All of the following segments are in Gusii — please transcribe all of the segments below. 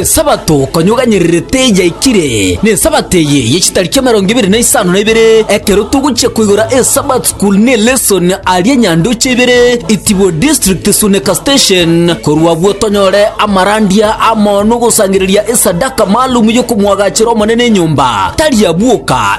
Esabato konyoganyererete yaikire, n'Esabato eye ye chitariki emerongo ebere na isano na ibere, ekero togochia koigora eSabbath School ne lesson aria Nyandoche ibere, Itibwe District Sunika Station, korwa abwo tonyore amarandia amo nogosangereria esadaka maalum yokomwagachera Omonene enyomba, tari abwoka,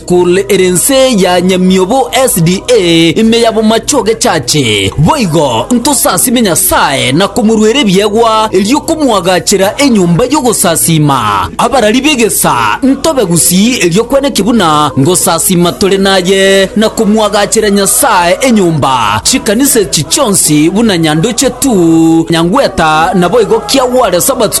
Kore ere ense ya nyamiobo SDA ime ya bomache ogechache, boigo ntosasime Nyasae na komoruera ebiegwa, erio komoagachera enyomba y'ogosasiima. Abarari b'egesa ntobe gusii erio kweneki buna ngosasiima tore naye, na komoagachera Nyasae enyomba, chikanisa echi chionsi buna nyandoche tu, nyangweta, naboigo kiagware Sabato.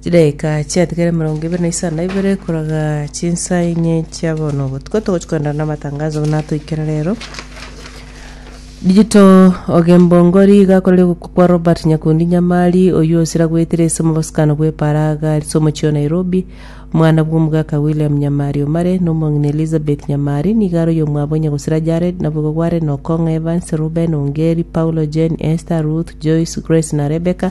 Chidaeka chiatigere emerongo ebere na isano na ibere koraga chinsa enye chia bono obotuko togochi koendana na amatangazo buna atoikera rero. Digital Ogembongori iga akorire ogokwa kwa Robert Nyakundi Nyamari oyio osira goetire ase omobosokano bwe Paraga ase omochie o Nairobi. Omwana bwa omogaka William Nyamari Omare na omong'ina Elizabeth Nyamari nigo aroiyo omwabo onye gosira Jared nabo igo gware na Okong'a Evans, Reuben, Ongeri, Paulo, Jane, Esther, Ruth, Joyce, Grace na Rebecca.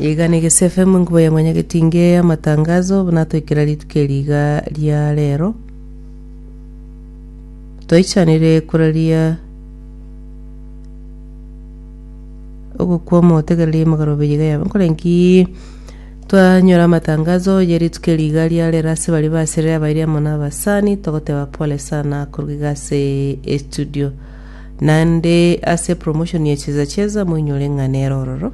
Igana Egesu FM enkuba ya Mwanyagetinge y'amatangazo, buna toikera rituko eri iga ria rero. Toichanire koraria ogokwama otegererie emegorobe iga yabe. Nkorenki twanyora amatangazo ye rituko eri iga ria rero ase bari baserire abairi amo na abasani, togoteba pole sana koruga iga ase estudio. naende ase promotion ya cheza cheza moinyore ng'a nere ororo.